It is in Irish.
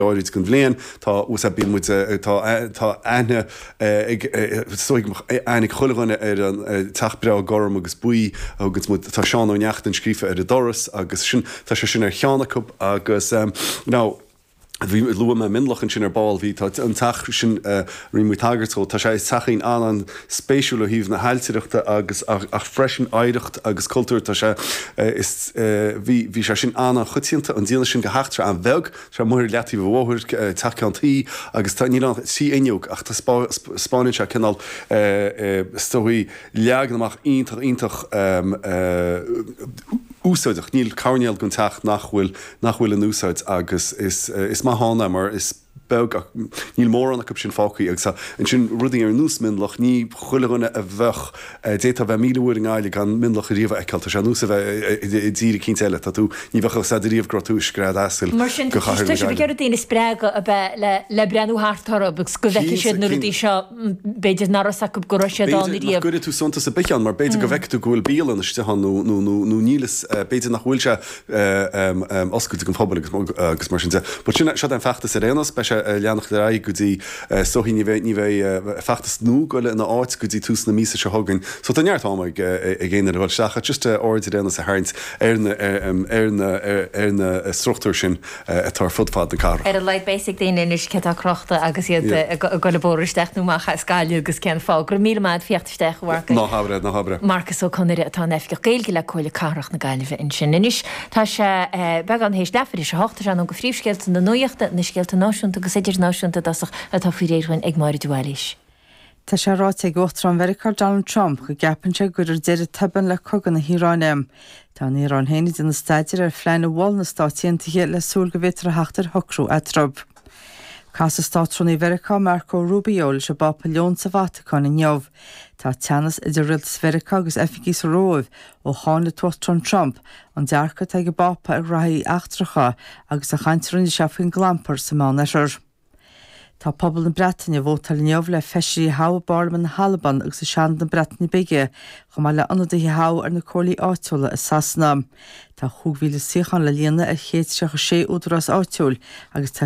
gairid den bhliain. Tá úsáid bíonn muid tá tá aithne ag is dóigh aithne ag chuile dhuine ar an teach breá gorm agus buí a thuganns muid. Tá Seán Ó Neachtain scríofa ar an doras agus sin tá sé sin ar cheann acu agus ná bhí luaigh mé Mionlach ansin ar ball bhí tá an teach sin a rinne muid tagairt dhó. Tá sé is teachín an an spéisiúil é ó thaobh na hailtireachta agus ach freisin oidhreacht agus cultúr tá sé is bhí bhí sé sin an an choitianta an déanamh sin de theach an bheag Tá amuigh ar leataobh an bhóthair, teach ceann tuí, agus tá, níl ann ach trí fhuinneog, ach tá spás, spáineann sé cineál, is dóigh, leagan amach iontach, iontach úsáideach, níl coirnéal den teach nach bhfuil, nach bhfuil in úsáid agus is, is maith ann é mar is beag, níl mórán acu sin fágthaí agus tá ansin rudaí ar nós Mionlach, ní chuile dhuine a bheadh D'fhéadfá a bheith míle uair i nGaillimh gan Mionlach riamh a fheiceáil. Tá sé ar nós a bheith i dtír eicínt eile. Tá tú, ní bheadh a fhios a'd riamh go raibh tú i scread asail de chathair na Gaillimhe. Mar sin, tá sé ar daoine a spreagadh a bheith le le breathnú thart orthu agus go bhfeicfidh siad na rudaí seo b'fhéidir nach raibh 's acu go raibh siad ann riamh. B'fhéidir nach gcuirfidh tú suntas ar bith ann mar b'fhéidir go bhfeicfidh tú go bhfuil bialann istigh ann nó nó nó nó níl fhios, b'fhéidir nach bhfuil sé. oscailte don phobal agus mar sin de. But sin seo an feachtas ar aon nós, beidh sé a leanacht ar aghaidh go dtí is dóigh ní bheidh, ní bheidh feachtas nua ag goil ina áit go dtí tús na míosa seo chugainn. So tá neart ama ag ag éinne le ghoil isteach ach just aird ar aon nós a tharraingt ar na ar na ar na struchtúir sin atá ar fud fad na cathrach. Ar a laghad beidh fhios ag daoine anois cé atá crochta agus iad ag goil an bóthar isteach nó amach as Gaillimh agus cén fáth. Go raibh míle maith a'd, Fiach. Ná habair é, ná habair é. Marcus Ó Conaire atá ina Oifigeach Gaeilge le Comhairle Cathrach na Gaillimhe ansin anois. Tá sé beagán théis leathuair théis a hocht agus anonn go phríomhscéalta na nuaíochta, na scéalta náisiúnta agus idirnáisiúnta i dtosach atá faoi réir dhuinn ag Máire de Bhailís. Tá sé ráite ag Uachtarán Mheiriceá Donald Trump go gceapann sé go gcuirfear deireadh tobann le cogadh na hIaráine. Tá an Iaráin féin ag déanamh staidéir ar phlean a mhol na Stáit Aontaithe le súil go bhféadfar a theacht ar shocrú eatarthu. Casfaidh Státrúnaí Mheiriceá Marco Rubio leis an bPápa Leon sa Vatacáin inniu. Tá teannas idir rialtas Mheiriceá agus oifigigh sa Róimh ó cháin an tUachtarán Trump an dearcadh atá ag an bPápa ar ghnóthaí eachtracha agus an chaint a rinne sé faoin gclampar sa Meánoirthear. Tá pobal na Breataine ag vótáil inniu le feisirí a thoghadh i bParlaimint na hAlban agus i Seanad na Breataine Bige chomh maith le ionadaithe a thoghadh ar na comhairlí áitiúla i Sasana. Tá 5,000 suíochán le líonadh ar 136 údarás áitiúil agus tá